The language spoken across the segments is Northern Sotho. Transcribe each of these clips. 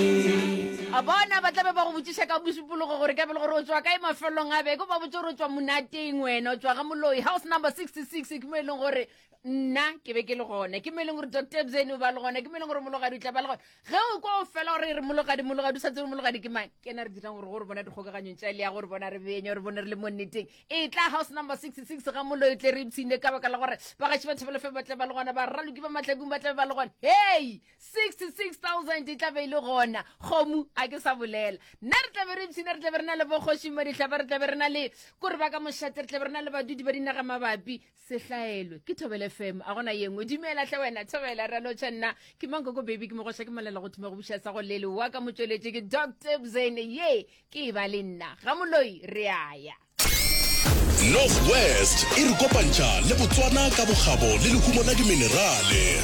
a bona ba tlabe ba go botšiša ka bosupologo gore ka pele gore o tswa kae mafelong a beke ba botse gore o tswa monateng wena o tswa ga moloi house number 66 ke mo e leng gore nna ke be ke le gone ke mo e leng gore doctor bzene o ba le gone ke mo e leng gore mologadi o tla ba le gone ge o kwa o fela gore re mologadi mologadi o sa tsebe mologadi ke mang ke na re dirang gore gore bona dikgokaganyong tša le ya gore bona re benye gore bone re le mo nneteng e tla house number 66 ga moloi tle re ipshine ka baka la gore bagaši ba thebelefe ba tle ba le gona ba raloki ba matlakung ba tle ba le gone hei 66,000 e tlabe e le gona kgomu a ke sa bolela nna re tlabe re ipshina re tlabe re na le bokgošing ba dihlaba re tlabe re na le kore ba ka mošate re tlabe re na le badudi ba dinaga mabapi sehlaelwe ke thobele fm a gona ye nngwe dumela tle wena thobela re lotšha nna ke mankoko baby ke mogoša ke molela go thuma go buša sa go lele wa ka motsweletše ke dr bzene ye ke e ba le nna ga moloi re aya North West e re kopantšha le Botswana ka bokgabo le lehumo la diminerale.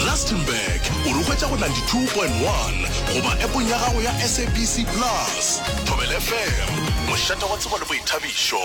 Rustenburg o re hwetša go 92.1 goba epong ya gago ya SABC Plus. Thobela FM, mošate wa tsebo le boithabišo.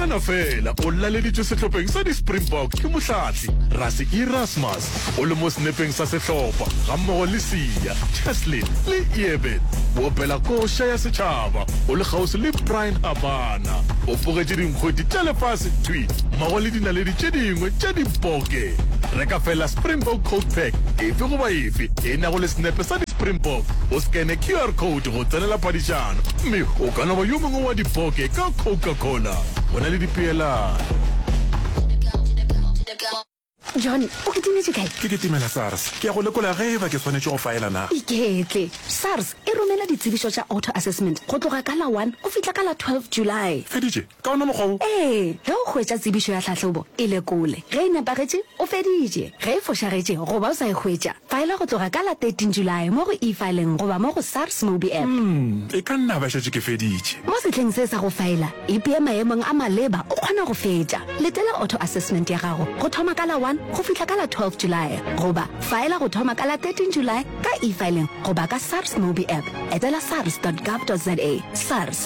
nagana fela o laleditswe sehlopheng sa di-springbok ke mohlahle rase erasmus o le mo senepeng sa sehlopha gammogo le sia cheslin le eben boopela koša ya setšhaba o le kgauswi le brian abana o pogetše dinkgweti tša lefase twi mmogo le dinaledi tše dingwe tša diboke re ka fela springbok code pack efe goba efe e nago le senepe sa di-springbok o scane qr code go tsenela padišano, mme o ka no ba yo mongwe wa dipoke ka Coca-Cola go na le dipeelano. John, o kitimetše kae? Ke kitimela SARS. Ke ya go lekola ge e ba ke swanetše go faela na. Iketle. SARS e romela ditsebišo tša auto-assessment go tloga ka la one go fihla ka la 12 July. Feditše? Ka wona mokgwa wo. Ee, ge o hwetša tsebišo ya tlhahlobo, e lekole. Ge e nepagetše, o feditše. Ge e fošagetše goba o sa e hwetša, faela go tloga ka la 13 Julae mo go E-Filing goba mo go SARS Mobi App. E ka nna ba šetše ke feditše. Mo sehleng se sa go faela, ipee maemong a maleba o kgona go fetša. Letela auto-assessment ya gago go thoma ka la 1 go fihla ka la 12 Julae goba faela go thoma ka la 13 Julae ka E-Filing goba ka SARS Mobi App. Etela sars dot gov dot za. SARS.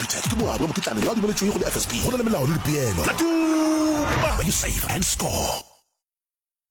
Peter ke morwa wa mokitlane yo a dumeletšwego le FSB. Go na le melao le dipeelo. Tla tuma when you save and score.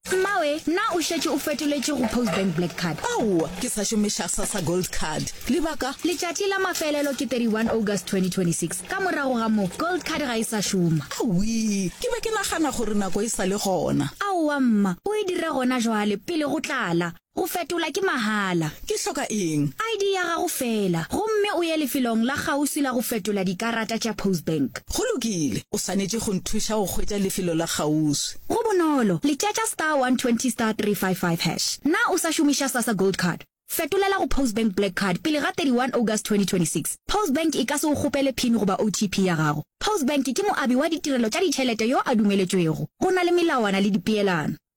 Mmawe, na o šetše o fetoletše go Postbank Black Card? Aowa, ke sa šomiša Sassa Gold Card. Lebaka? Letšatši la mafelelo ke 31 August 2026. Ka morago ga moo, Gold Card ga e sa šoma. Awii, ke be ke nagana gore nako e sa le gona. Aowa mma, o e dira gona jwale, pele go tlala. Go fetola ke mahala. Ke hloka eng? ID ya gago feela, gomme o ye lefelong la kgauswi la go fetola dikarata tša Postbank. Go lokile. O swanetše go nthuša go hwetša lefelo la kgauswi. Go bonolo. Letšatša star 120 star 355 hash. Na o sa šomiša Sasa Gold Card? Fetolela go Postbank Black Card pele ga 31 August 2026. Postbank e ka se go kgopele pin goba OTP ya gago. Postbank ke moabi wa ditirelo tša ditšhelete yo a dumeletšwego. Go na le melawana le dipeelano.